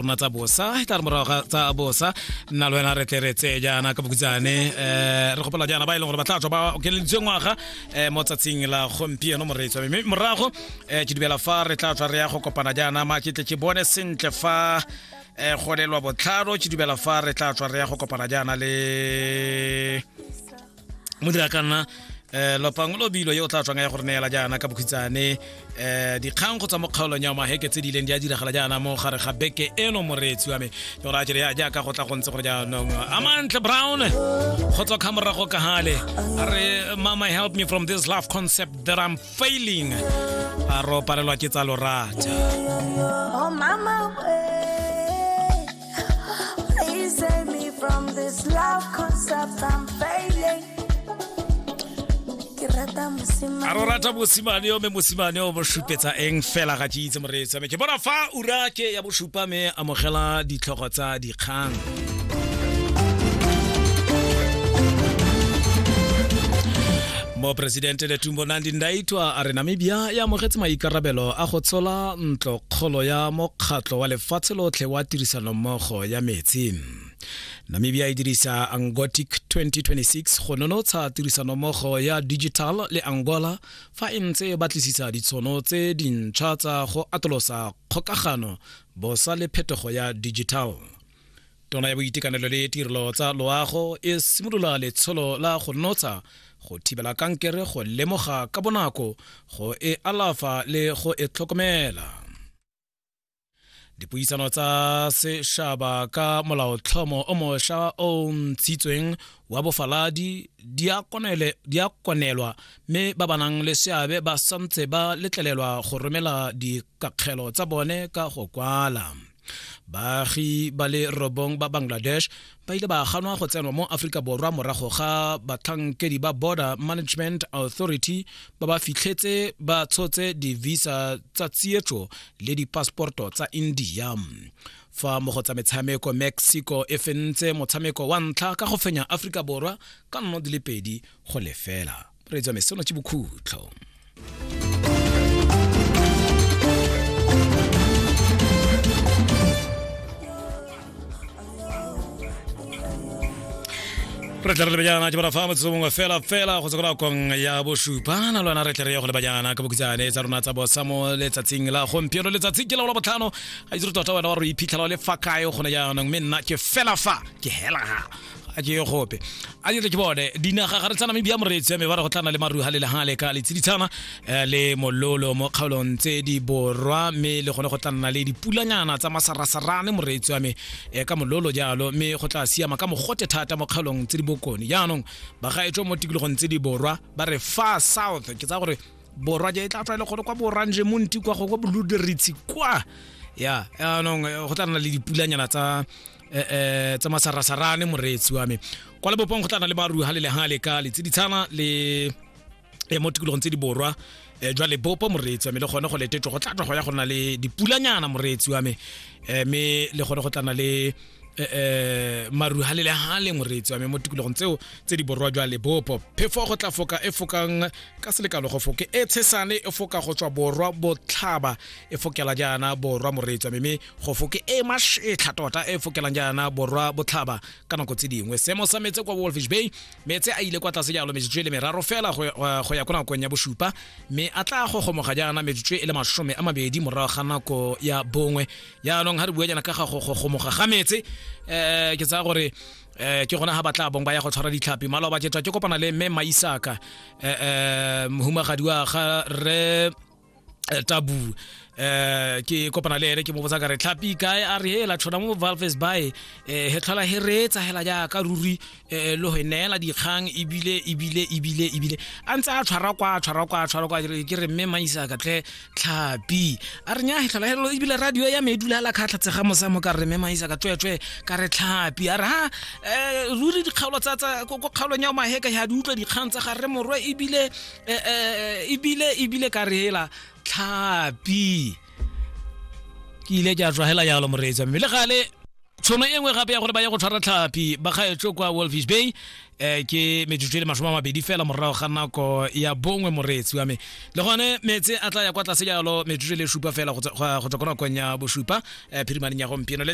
rona tsa bosa e tla re morago ga tsa bosa nna le wena re tle re tseye jaana ka bokutsane um eh, re gopola jaana ba e leng gore ba tla tswa ba okeleditswe ngwaga um mo tsatsing la gompieno moreetswa mme morago um ke dumela fa re tla tswa re ya go kopana jaana ma ke tle ke bone sentle fa um golelwa botlhalo ke dumela fa re tla tswa re ya go kopana jaana le mo dira ka nna eh lopang lo bilo yo o tla tswang ya gore neela jaana ka bokhitsane eh dikgang go tswa mo kgaolong ya maheke tse di ileng di a diragala jaana mo gare ga beke eno moreetsi wa me yo ra jere ya jaaka go tla go ntse gore jaanong amantle brown go tswa khamorago ka hale a re mama help me from this love concept that i'm failing a ro palelwa ke tsa lorata Oh, mama, eh. Please save me from this love concept I'm failing. Ke rata mosimane. a ro rata mosimane yo me mosimane o mo supetsa eng fela ga tšitse moreetsa me ke bona fa ura ke ya bosupa me amogela ditlhogo tsa dikgang moporesidente letumbo nandi ndaitwa a re namibia e amogetse maikarabelo a go tshola ntlo kgolo ya mokgatlho wa lefatshe lotlhe wa tirisanommogo ya metsi namibia e dirisa angotic 2026 go nonotsha tirisanommogo ya digital le angola fa e ntse e batlisisa ditshono tse dintšha tsa go atolosa kgokagano bosa le phetogo ya digital tona ya boitekanelo le tirelo tsa loago e simolola letsholo la go notsha go thibela kankere go lemoga ka bonako go e alafa le go e tlhokomela dipuisano tsa sešaba ka molaotlhomo o mošwa o ntshitsweng wa bofaladi di a konelwa mme ba ba nang le seabe ba santse ba letlelelwa go romela dikakgelo tsa bone ka go kwala baagi ba le robong ba bangladesh ba ile ba ganwa go tsenwa mo aforika borwa morago ga batlhankedi ba border management authority ba ba fitlhetse ba tshotse di-visa tsa tsietso le dipassporto tsa india fa mo go tsa metshameko mexico e fentse motshameko wa ntlha ka go fenya aforika borwa ka nno di le pedi go lefela moreetsi wa me seno ke bokhutlho re tle re lebejana ke bara fa motsotso mongwe fela fela go tsekora kong ya bosupa na lwana re tle re ye go lebajana ka bokutsane tsa rona tsa bosa mo letsatsing la gompieno letsatsi ke laola botlhano ga itse re tota wena wa re iphitlhela o le fa kae gone jaanong mme nna ke fela fa ke hela ga a ke ye gope a dire ke bone dinaga ga re tsa namibia moreetsi ya me ba re go tlana le maruha le lehale ka letsiditshana eh, le mololo mo kgaolong tse di borwa mme le gone go tla nna le dipulanyana tsa masarasarane moreetsi wa me eh, ka mololo jalo mme go tla siama ka mogote thata mo kgaolong tse di bokone jaanong bagaetso mo tikologong tse di borwa ba re far south ke tsa gore borwa je e tla tswa e le gore kwa boranje monti kwa go kwa boluderitshi kwa ya jaanong eh, go tla nna le dipulanyana tsa eh, eh tsa masarasarane moreetsi wa me kwa lebopong go tla na le barui ga le lega le ka letsi ditshana le eh, mo tikologong tse di borwa eh, jwa lebopo moreetsi wa me le gone go letetso go tlatwa go ya go na le dipulanyana moreetsi wa me eh, me le gone go tla na le Eh, eh maru ha le ha le moretsi wa me mo tikologong tseo tse di borwa jwa lebopo phefo go tla foka e fokang ka selekalo go foke e tshesane e foka go tswa borwa botlhaba e fokela jaana borwa moretsi wa me go fo ke e masetlha tota e fokelang jaana borwa botlhaba ka nako tse dingwe seemo sa metse kwa wolfish bay metse a ile kwa tlase jalo metsotso e le meraro fela go ya kwa nakong ya bosupa mme a tla go gomoga jaana metsotso e le masome a mabedi morago ga nako ya bongwe jaanong ga re bua jaana ka ga go gomoga ga metse um ke tsaya gore eh ke gona ha batla bong ba ya go tshwara ditlhapi malo ba jetwa ke kopana le mme maisaka eh mohumagadi wa ga re eh, tabu eh ke kopana le ene ke mo botsa ka re tlhapi kae a re hela tshona mo valves by eh he tlhola he reetsa hela ja ka ruri eh lo he neela dikgang ebile ebile ebile ebile a ntse a tshwara kwa tshwara kwa tshwara kwa ke re mme maisa ka tle tlhapi a re nya he tlhola helo ebile radio ya me e dula la khatlha tsega mosa mo ka re mme maisa ka tswetswe ka re tlhapi a re ha eh ruri dikgaolo tsa tsa ko kgaolong ya maheka ya di utlwa dikgang tsa ga re morwe ebile e, e, e, ebile ebile ka re hela tlhapi ke ile ke a tswa hela yalo moreetsa mme le gale tshono e nngwe gape ya gore ba ye go tshwara tlhapi ba gaetso kwa wolfish bay um ke metsotso e le masome a mabedi fela morago ga nako ya bongwe moreetsi wa me le gone metse a tla ya kwa tlase jalo metsotso e le supa fela go tswa ko nakong ya bosupa um eh, phirimaneng ya gompieno